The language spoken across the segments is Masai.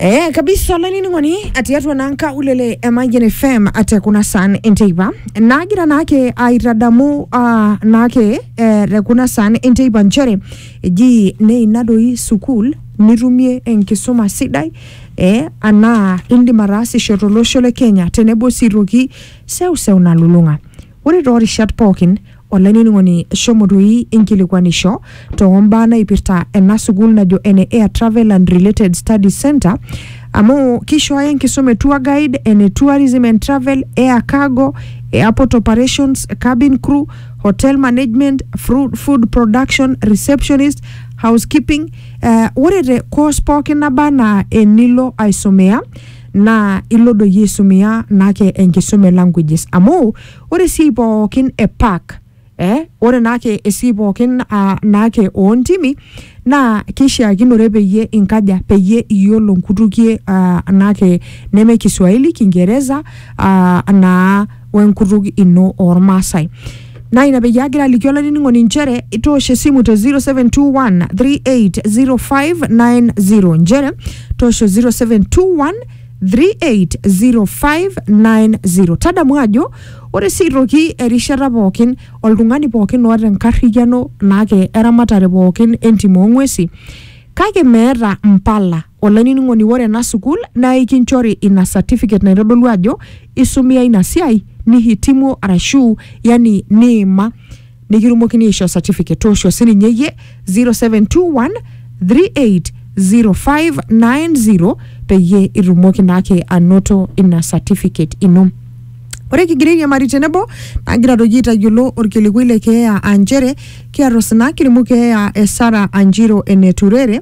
Eh, kabisa olainining'oni atii atua naa nkaulele e Mayian FM ate kuna saan enteipa naagira naake aitadamu ah, naake eh, te kuna saan enteipa nchere eji neina doi sukuul nitumie enkisuma sidai eh, anaa indim ataasisho tolosho le Kenya tenebo sii toki seuseu nalulung'a Ore too rishat pooki, olainining'oni shomo doi inkilikuanisho too mbaa naipirta ena sukuul najo ene Air Travel and Related Studies Centre amu keishooyo enkisuma e Tour Guide, ene Tourism and Travel, Air Cargo, Airport Operations, Cabin Crew, Hotel Management, Fru- Food Production, Receptionist, Housekeeping. Eh, ore te course pooki naba anaa enilo aisomea naa ilo doi aisumia naake enkisuma e languages amu ore esiai pookin e park eh, ore naake esiai pookin ah, naake oontimi naa kishiakinore peyie inkaja peyie iyiolo nkutukie ah, naake neme Kiswahili, Kingereza ah, naa wenkutuk ino oormaasai naa ina peyie agira aliki olainining'oni inchere toosho esimu te 0721 380590 inchere toosho 0721 380590 tadamu ajo ore sii aitoki erishata pookin oltung'ani pookin oota enkarriyiano naake eramatare pookin entim oong'uesi kake meeta mpala Olainining'oni ore ena sukuul naa ikinchori ina certificate naitodolu ajo isumia ina siai nihitimuo arashu yani niima nikitumokini aishoo certificate. Toosho sininye iyie 0721 380590 peyie itumoki naake anoto ina certificate ino. Ore kigira airiamari tenebo naa kigira doi aitayiolo orkilikwai le keeya aa nchere kiata osina kilimu keeya e Sarah Anjiro Eneturere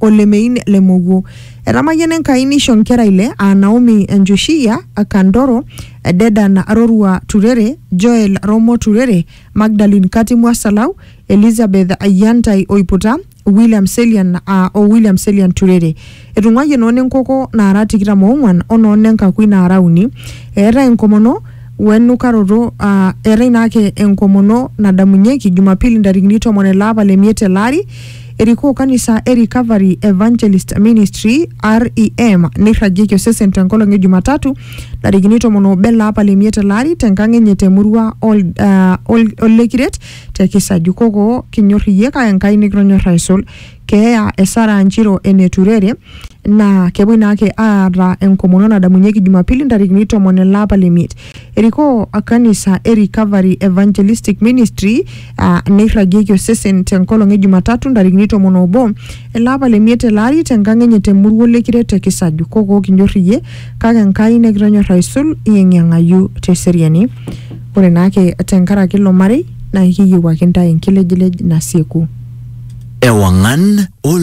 o lemein le mowuo. Etamayiana Enkai neisho nkera ile aa Naomi Enjoshiya, Kandoro, Dedan Rorua Turere, Joel Romo Turere, Magdalin Katimwa Salau, Elizabeth Yantai Oiputa, William Selian aa o William Selian Turere. Etung'uayie noo nenkoko naara tikitam oong'uan o noo nenkakui naara uni. Eetae enkomono we nukaroto aa eetae naake enkomono nadamunyieki Jumapili ntarikini tomon ele apa le miet tele ari. Erikoo kanisa e Recovery Evangelist Ministry REM neirragieki osesen tenkolong e Jumatatu ntarikini tomon oobo ele apa le miet ele ari tenkang enye temurua ol, uh, ol, Olekiret te Kisaju koko kinyor iyie kake Enkai nikitonyor aisul. Keeya e Sarah Njiro eneturere naa kepuoi naake aata enkomono nadamunyieki jumapili ntarikini tomon ele apa le miet erikoo kanisa e recovery evangelistic ministry aa neirragieki osesen tenkolong e jumatatu ntarikini tomon obo ele apa le miet ele ari tenkang enye temurua olekire te kisaju kokoo kinyor iyie kake enkai nikitonyorra aisul iyeng'iyeng'ayu teseriani ore naake tenkaraki ilo marei naa ekiyieu ake intae enkilejilej nasieku. Ewang'an o